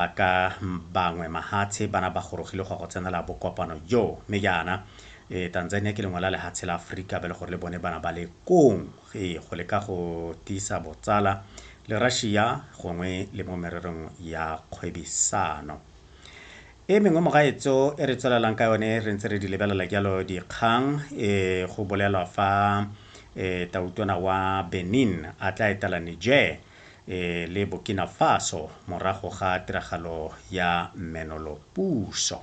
Ba ka bangwe mahatshe bana ba gorogile go ya go tsenela bokopano joo, mme jaana ee, Tanzania ke lengwe la lehatshe la Afrika ba le gore le bone bana ba le kong, ee, go leka go tiisa botsala le Russia gongwe le mo mererong ya kgwebisano. E mengwe mogaetso e re tswelelang ka yone re ntse re di lebelela jalo dikgang, ee, go bolelwa fa ee, tautona wa Benin a tla etela Niger, le Burkina Faso morago ga tiragalo ya mmenolopuso.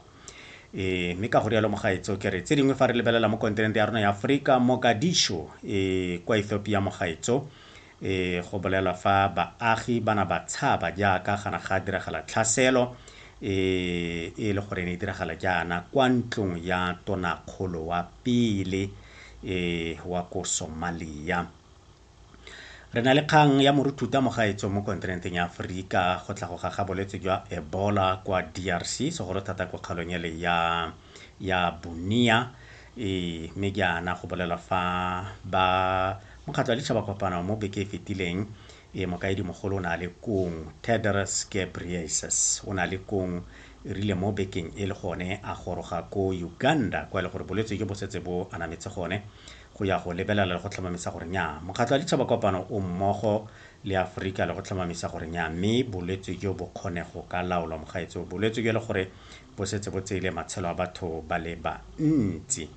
E, mme ka go rialo mogaetso ke re tse dingwe fa re lebelela mo kontinente ya rona ya Aforika, Mogadishu e, kwa Ethiopia mogaetso e, go bolelwa fa baagi bana ba tshaba jaaka gana ga diragala tlhaselo e, e le gore ne e diragala jaana kwa ntlong ya tonakgolo wa pele e, wa ko Somalia. Re na le kgang ya Moruthuta Mogaetso mo kontinenteng ya Aforika go tlhagoga ga bolwetse jwa Ebola kwa DRC, segolo thata kwa kgaolong ele ya, ya Bunia. E, mme jaana go bolelwa fa ba mokgatlho wa ditšhaba kopano mo beke e fetileng e mokaedi mogolo o ne a le kong Tedros Ghebreyesus o ne a le kong e rile mo bekeng e le gone a goroga ko Uganda kwa e le gore bolwetse jo bo setse bo anametse gone go ya go lebelela le go tlhomamisa gore nnyaa Mokgatlho wa Ditšhaba Kopano o mmogo le Aforika le go tlhomamisa gore nnyaa mme bolwetse jo bo kgone go ka laolwa mogaetsho. Bolwetse jo e le gore bo setse bo tseile matshelo a batho ba le bantsi.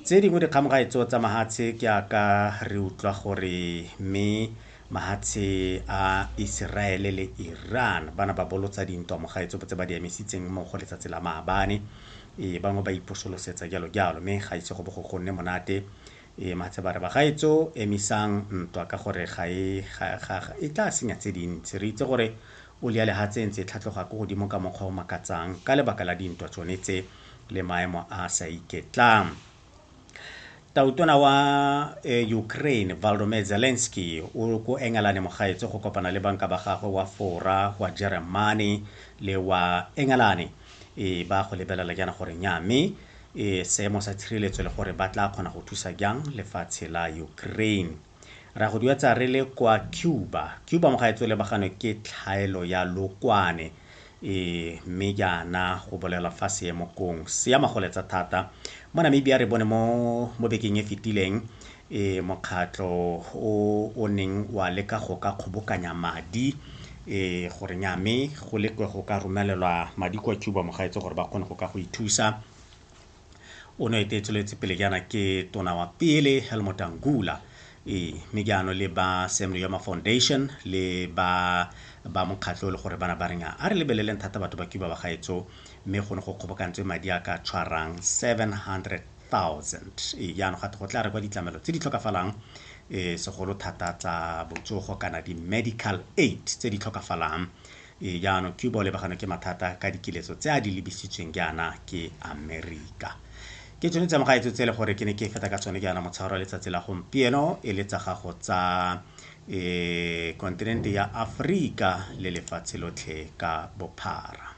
Tse dingwe dikgang gaetsho tsa mahatshe ke a ka re utlwa gore mme mahatshe a Iseraele le Iran ba na ba bolotsa dintwa mogaetsho botse ba di emisitseng mmogo letsatsi la maabane Ee bangwe ba iposolosetsa jalo jalo, mme ga ise go bo go nne monate. Ee matshe ba re bagaetso emisang ntwa ka gore ga e ga ga e tla senya tse dintsi. Re itse gore oli ya lehatshe e ntse e tlhatloga ko godimo ka mokgwa o makatsang ka lebaka la dintwa tsone tse le maemo a a sa iketlang. Tautona wa eh, Ukraine Volodymyr Zelensky o ko Engelane mogaetse go kopana le banka ba gagwe wa fora wa Jeremane le wa Engelane e ba go lebelela jaana gore nya mme e seemo sa tshireletso le gore ba tla kgona go thusa jang lefatshe la Ukraine. Re a go duetsa re le kwa Cuba. Cuba mo gaetsho lebagano ke tlhaelo ya lokwane e mme jaana go bolelwa fa seemo kong se ama go letsa thata mo namibia re bone mo mo bekeng e fetileng e mokgatlho o o neng wa leka go ka kgobokanya madi e gore nyame go lekwe go ka romelelwa madi kwa cuba mo gaetse gore ba kgone go ka go ithusa o ne ete e tsweletse pele jaana ke tona wa pele helmut angula ee mme jaanong le ba sam yoma foundation le ba ba mokgatlho le gore bana ba reng a re lebeleleng thata batho ba cuba ba gaetso mme go ne go kgobokantswe madi a ka tshwarang 700000 ee jaanong gate go tla re kwa ditlamelo tse di tlhokafalang um segolo thata tsa botsogo kana di-medical aid tse di tlhokafalang Ee, jaanong Cuba o lebaganwe ke mathata ka dikiletso tse a di lebisitsweng jaana ke Amerika. Ke tsone tsa mogaetso tse e le gore ke ne ke feta ka tsone jaana motshegare wa letsatsi la gompieno e le tsa gago tsa e kontinente ya Aforika le lefatshe lotlhe ka bophara.